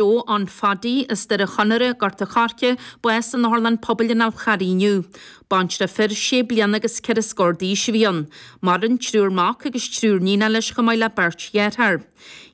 Joe John Phaddy as Doire Chonaire, Gort a Choirce, bás san otharlann pobail ar an Charraig inniu. Baintreach fir sé bliana agus ceithre scór d'aois a bhí ann. Maireann triúr mac agus triúr níon leis chomh maith le beirt dheartháir.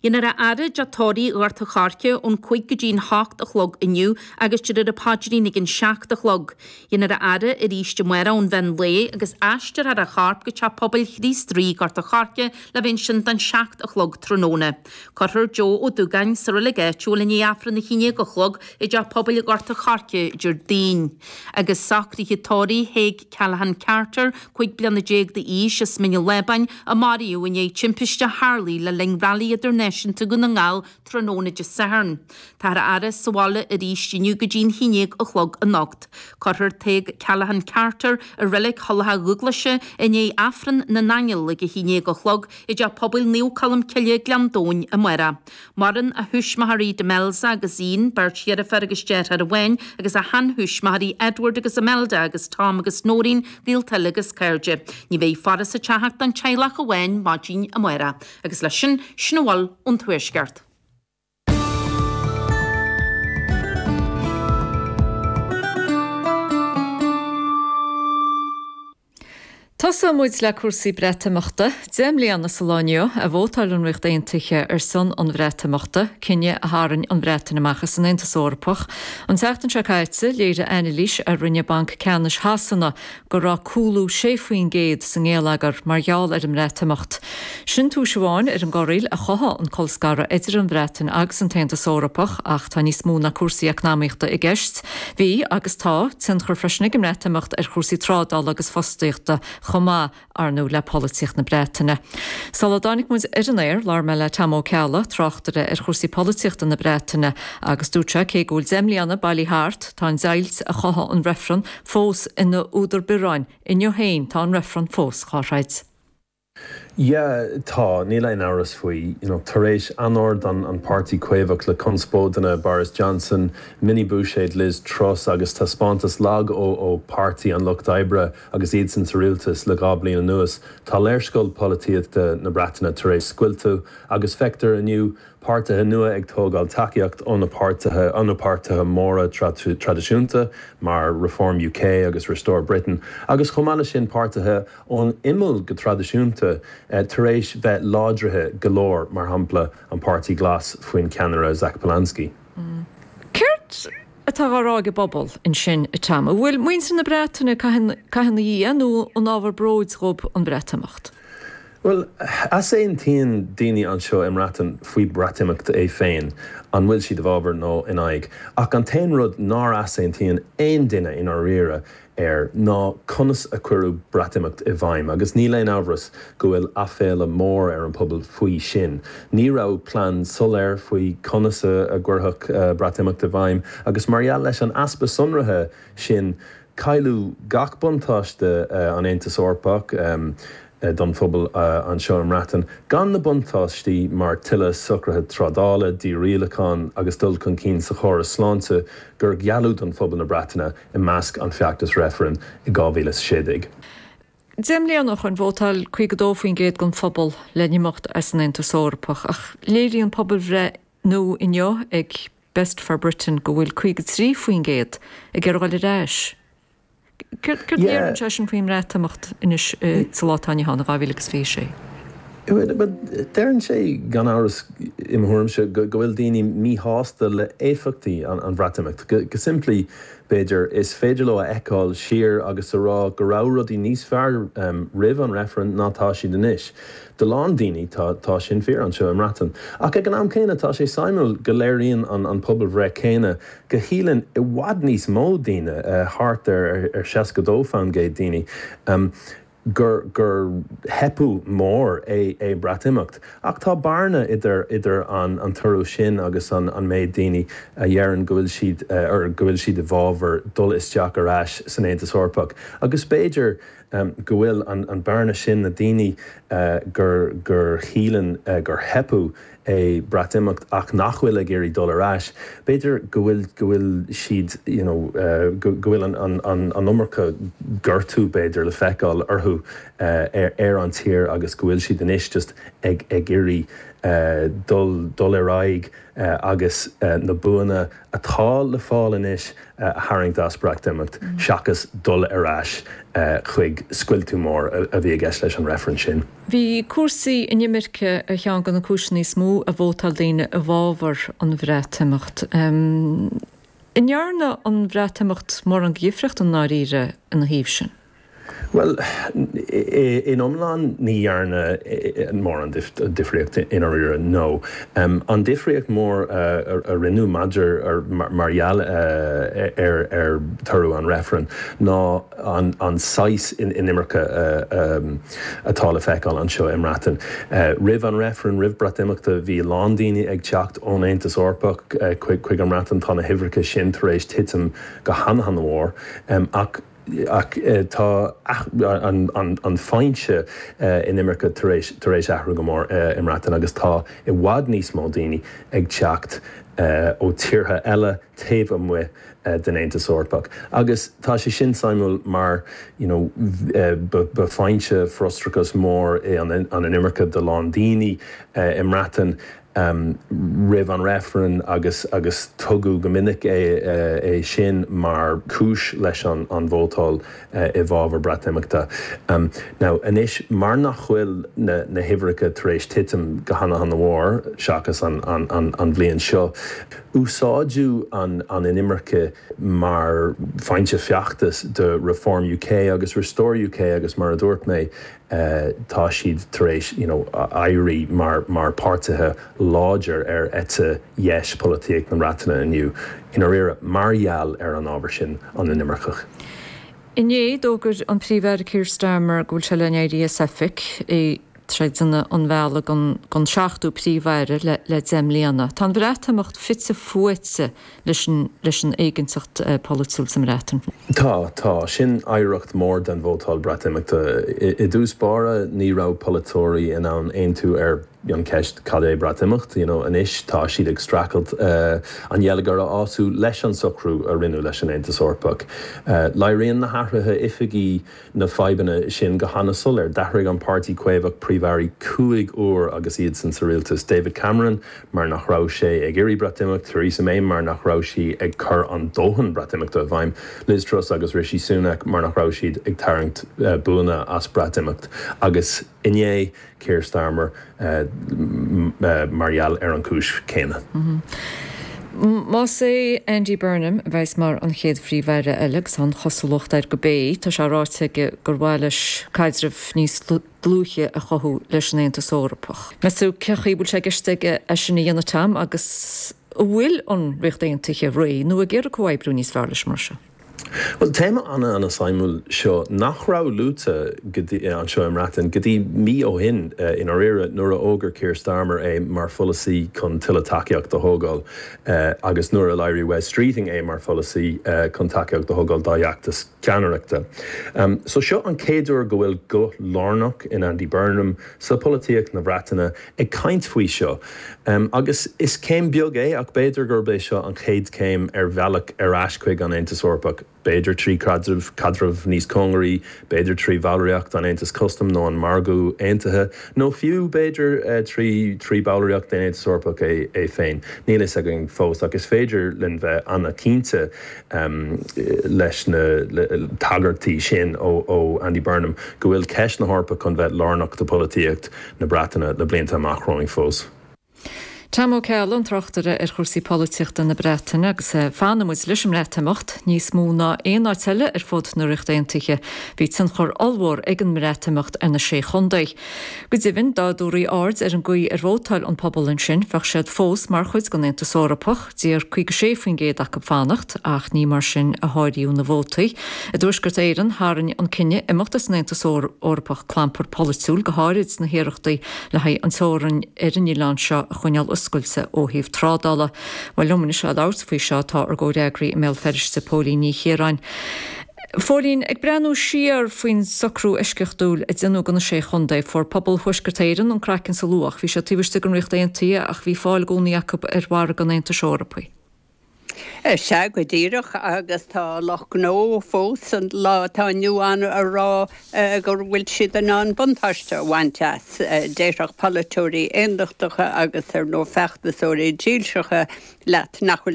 Déanfar a fhaire i dTeach Tórraimh Ghort a Choirce ón cúig go dtí an h-ocht a chlog inniu agus déarfar an paidrín ag an seacht a chlog. Déanfar a fhaire arís amárach ón mheán lae agus aistreofar a chorp go teach pobail Chríost Rí Gort a Choirce le bheith ansin don seacht a chlog tráthnóna. Cuirfear Joe Ó Dúgáin sa reilig áitiúil i ndiaidh Aifreann a haon déag a chlog i dTeach Pobail i nGort a Choirce, Déardaoin. Agus socruithe tórraimh Thaidhg Callaghan Carter, cúig bliana déag d'aois, as Mín an Lábáin, a maraíodh i ndiaidh timpiste a tharla le linn Railí Idirnáisiúnta Dhún na nGall tráthnóna Dé Sathairn, Táthar á fhaire sa bhaile arís inniu go dtí'n haon dhéag a chlog anocht. Cuirfear Tadhg Callaghan Carter i Reilig Thulach Dhúghlaise i ndiaidh Aifreann na nAingeal ag a haon dhéag a chlog i dTeach Pobail Naomh Colm Cille, Gleann Domhain, amárach. Maireann a thuismitheoirí Demelza agus Ian, beirt dheirfiúr agus deartháir amháin, agus a shean-thuismitheoirí Edward agus Imelda agus Tom agus Noreen, gaolta uilig agus cairde. Ní bheidh faire sa teach ach don teaghlach amháin maidin amárach. Agus leis sin, sin a bhfuil ón Tuaisceart. Tosóidh muid le cúrsaí Breatimeachta. Deich mbliana is an lá inniu a vótáil an Ríocht Aontaithe ar son an Bhreatimeachta, cinneadh a tharraing an Bhreatain amach as an Aontas Eorpach. An tseachtain seo caite, léirigh anailís a rinne Banc Ceannais Shasana go raibh cúlú 6% sa ngeilleagar mar gheall ar an mBreatimeacht. Sin tomhas amháin ar an gcorraíl a chothaigh an colscaradh idir an Bhreatain agus an tAontas Eorpach ach tá níos mó ná cúrsaí eacnamaíochta i gceist. Bhí, agus tá, tionchar freisin ag an mBreatimeacht ar chúrsaí trádála agus fostaíochta chomh maith, ar ndóigh, le polaitíocht na Breataine. Sular dtáinig muid ar an aer, labhair mé le Tom Ó Ceallaigh, tráchtaire ar chúrsaí polaitíochta na Breataine, agus dúirt sé cé go bhfuil deich mbliana bailithe thart, tá an deighilt a chothaigh an reifreann, fós ina údar biorráin. Inniu féin tá an reifreann fós dhá throid. Yeah, tá, níl aon amhras faoi. You know, tar éis anord an an páirtí caomhach le conspóideanna Boris Johnson, mini buiséad Liz Truss agus taispeántas lag ó ó Páirtí an Lucht Oibre agus iadsan sa rialtas le dhá bliain anuas, tá léarscáil pholaitíochta na Breataine tar éis scoilteadh agus feictear inniu Páirtithe nua ag tógáil tacaíocht ó na páirtithe ó na páirtithe móra traidisiúnta mar Reform UK agus Restore Britain agus chomh maith leis sin páirtithe ón imeall go traidisiúnta tar éis bheith láidrithe go leor, mar shampla an Páirtí Glas faoin cheannaire Zach Polanski. Céard atá á rá ag an bpobal ansin, a Tom? An bhfuil muintir na Breataine ag caitheamh ina dhiaidh nó an ábhar bróid dhóibh an Breatimeacht? Bhuel, easaontaíonn daoine anseo i mBreatain faoi Breatimeacht é féin, an bhfuil siad i bhfabhar nó in aghaidh, ach an t-aon rud nár easaontaíonn aon duine i ndáiríre air ná conas a cuireadh Breatimeacht i bhfeidhm, agus níl aon amhras go bhfuil aiféala mór ar an pobal faoi sin. Ní raibh plean soiléir faoi conas a gcuirfeadh Breatimeacht i bhfeidhm, agus mar gheall leis an easpa sonraithe sin, Cailleadh gach buntáiste an Aontas Eorpach don phobal anseo i mBreatain gan na buntáistí mar tuilleadh socruithe trádála, dí-rialacháin agus dul chun cinn sa chóras sláinte gur gealladh don phobail na Breataine i measc an feachtas reifrinn i 2016. Deich mbliana ó shoin vótáil 52% den phobal le n-imeacht as an Aontas Eorpach ach léiríonn pobalbhreith nua inniu ag. Best for Britain go bhfuil 53% ag iarraidh dul ar ais. Céard a deireann sé sin faoin mBreatimeacht anois sa lá atá inniu ann i 2026? Deireann sé gan amhras, i mo thuairimse, go bhfuil daoine míshásta le éifeachtaí an Bhreatimeacht. Go simplí, b'fhéidir, is féidir leo a fheiceáil siar agus a rá go raibh rudaí níos fearr roimh an reifreann ná tá siad anois. Do a lán daoine tá sin fíor anseo i mBreatain. Ach ag an am céanna tá sé suimiúil go léiríonn an an pobalbhreith céanna go síleann i bhfad níos mó daoine, thart ar 62 faoin gcéad daoine, gur gur teipeadh mór é é Breatimeacht. Ach tá bearna idir idir an an toradh sin agus an an méid daoine a dheireann go bhfuil siad or go bhfuil siad i bhfabhar dul isteach ar ais san Aontas Eorpach agus b'fhéidir go bhfuil an bearna sin na daoine gur gur shíleann gur teipeadh é Breatimeacht ach nach bhfuil ag iarraidh dul ar ais b'fhéidir go bhfuil go bhfuil siad you know go bhfuil an an an an iomarca gortú b'fhéidir le feiceáil orthu ar ar an tír agus go bhfuil siad anois just ag ag iarraidh dul dul ar aghaidh agus na buanna atá le fáil anois a tharraingt as Breatimeacht seachas dul ar ais chuig scoilteadh mór a bhí i gceist leis an reifreann sin. Bhí cúrsaí inimirce ar cheann de na cúiseanna is mó a vótáil daoine i bhfabhar an Bhreatimeacht. An ndearna an Breatimeacht mórán de dhifríocht i ndáiríre ina thaobh sin? Bhuel, in iomlán ní dhearna mórán difríocht i ndáiríre, nó an difríocht mhór a rinneadh maidir, mar gheall ar toradh an reifrinn, ná an saghas inimirce atá le feiceáil anseo i mBreatain. Roimh an reifreann, roimh Breatimeachta, bhí a lán daoine ag teacht ón Aontas Eorpach chuig an mBreatain, tá na huimhreacha sin tar éis titim go han-mhór, ach, ach tá an foinse inimirce tar éis athrú go mór i mBreatain agus tá i bhfad níos mó daoine ag teacht ó tíortha eile taobh amuigh den Aontas Eorpach agus tá sé sin suimiúil mar ba foinse frustrachais mór i an inimirce do lán daoine i mBreatain. um roimh an reifreann agus agus tugadh go minic é é sin mar chúis leis an an vótáil i bhfabhar Breatimeachta. um now anois mar nach bhfuil na na huimhreacha tar éis titim go hana hana mhór seachas an an an an bhliain seo úsáidtear an an inimirce mar foinse feachtais do Reform UK agus Restore UK agus mar a dúirt mé tá siad tar éis you know éirí mar mar páirtithe láidir ar eite dheis polaitíocht na mBreataine inniu i ndáiríre mar gheall ar an ábhar sin an inimirce. Inné, d'fhógair an Príomh-Aire Keir Starmer go bhfuil sé le n-éirí as oifig, ag réiteach an bhealaigh don don seachtú príomh-aire le le deich mbliana. Tá an Bhreatimeacht fite fuaite leis an éiginnteacht pholaitiúil sa mBreatain. Tá, tá. Sin oidhreacht mhór den vótáil Breatimeachta. I dtús báire ní raibh polaiteoirí in ann aontú ar an cheist cad é Breatimeacht? You know, anois tá siad ag streachailt an geilleagar a fhású leis an socrú a rinneadh leis an Aontas Eorpach. Léiríonn na hathruithe oifigí, na fadhbanna sin go hana soiléir. D'athraigh an Páirtí Caomhach Príomh-Airí cúig uair agus iadsan sa rialtas, David Cameron mar nach raibh sé ag iarraidh Breatimeacht, Theresa May mar nach raibh sí ag cur an dóthain Breatimeachta i bhfeidhm, Liz Truss agus Rishi Sunak mar nach raibh siad ag tarraingt buanna as Breatimeacht agus. Inné, Keir Starmer mar gheall ar an chúis chéanna. Más é Andy Burnham a bheidhs mar an chéad Phríomh-Aire eile, agus tá an chosúlacht air go beidh, tá sé ráite aige gur mhaith leis caidreamh níos dlúithe a chothú leis an Aontas Eorpach. Meastú cé chaoi bhfuil sé i gceist aige é sin a dhéanamh, Tom, agus an bhfuil an Ríocht Aontaithe réidh nó ag iarraidh comhoibriú níos fearr leis mar sin? Bhuel, téama ana ana suimiúil seo nach raibh luaite go dtí, anseo i mBreatain, go dtí mí ó shin, i ndáiríre, nuair a fhógair Keir Starmer é mar pholasaí chun tuilleadh tacaíocht a thógáil agus nuair a léirigh Wes Streeting é mar pholasaí chun tacaíocht a thógáil dá fheachtas ceannaireachta. So seo an chéad uair go bhfuil guth lárnach in Andy Burnham sa polaitíocht na Breataine, ag caint faoi seo agus is céim beag é ach b'fhéidir gurb é seo an chéad chéim ar bhealach ar ais chuig an Aontas Eorpach, b'fhéidir trí caidreamh níos cóngaraí, b'fhéidir trí bhallraíocht an Aontais Custaim nó an Margadh Aontaithe nó fiú b'fhéidir trí trí bhallraíocht den Aontas Eorpach é féin. Níl fhios againn fós ach is féidir linn bheith an-chinnte leis na tagairtí sin ó Andy Burnham go bhfuil ceist na hEorpa chun a bheith lárnach do pholaitíocht na Breataine le blianta amach romhainn fós. Tom Ó Ceallaigh, an tráchtaire ar chúrsaí polaitíochta na Breataine agus fanfaidh muid leis an mBreatimeacht. Níos mó ná aon áit eile ar fud na Ríochta Aontaithe, bhí tionchar ollmhór ag an mBreatimeacht ar na Sé Chontae. Go deimhin, dá dtabharfaí aird ar an gcaoi ar vótáil an pobal ansin, bheadh siad fós mar chuid den Aontas Eorpach. D'iarr 56% acu fanacht ach ní mar sin a háiríodh na vótaí. I dTuaisceart Éireann, tharraing an cinneadh imeacht as an Aontas Eorpach clampar polaitiúil go háirid na hiarrachtaí le haghaidh an teorainn ar an oileán seo a choinneáil oscailte ó thaobh trádála. Bhuel, liom anois le labhairt faoi seo, tá ár gcomhfhreagraí i mBéal Feirste, Póilín Ní Chiaráin, A Phóilín, ag breathnú siar faoin socrú eisceachtúil a déanadh do na Sé Chontae, fuair pobal Thuaisceart Éireann an craiceann is a luach. Bhí siad taobh istigh den Ríocht Aontaithe ach bhí fáil i gcónaí acu ar mhargadh an Aontais Eorpaigh. Is ea, go díreach, agus tá lucht gnó fós an lá atá inniu ann ag rá go bhfuil siad in ann buntáiste a bhaint as. Déarfadh polaiteoirí aondachtacha agus, ar ndóigh, feachtasóirí dílseacha leat nach bhfuil.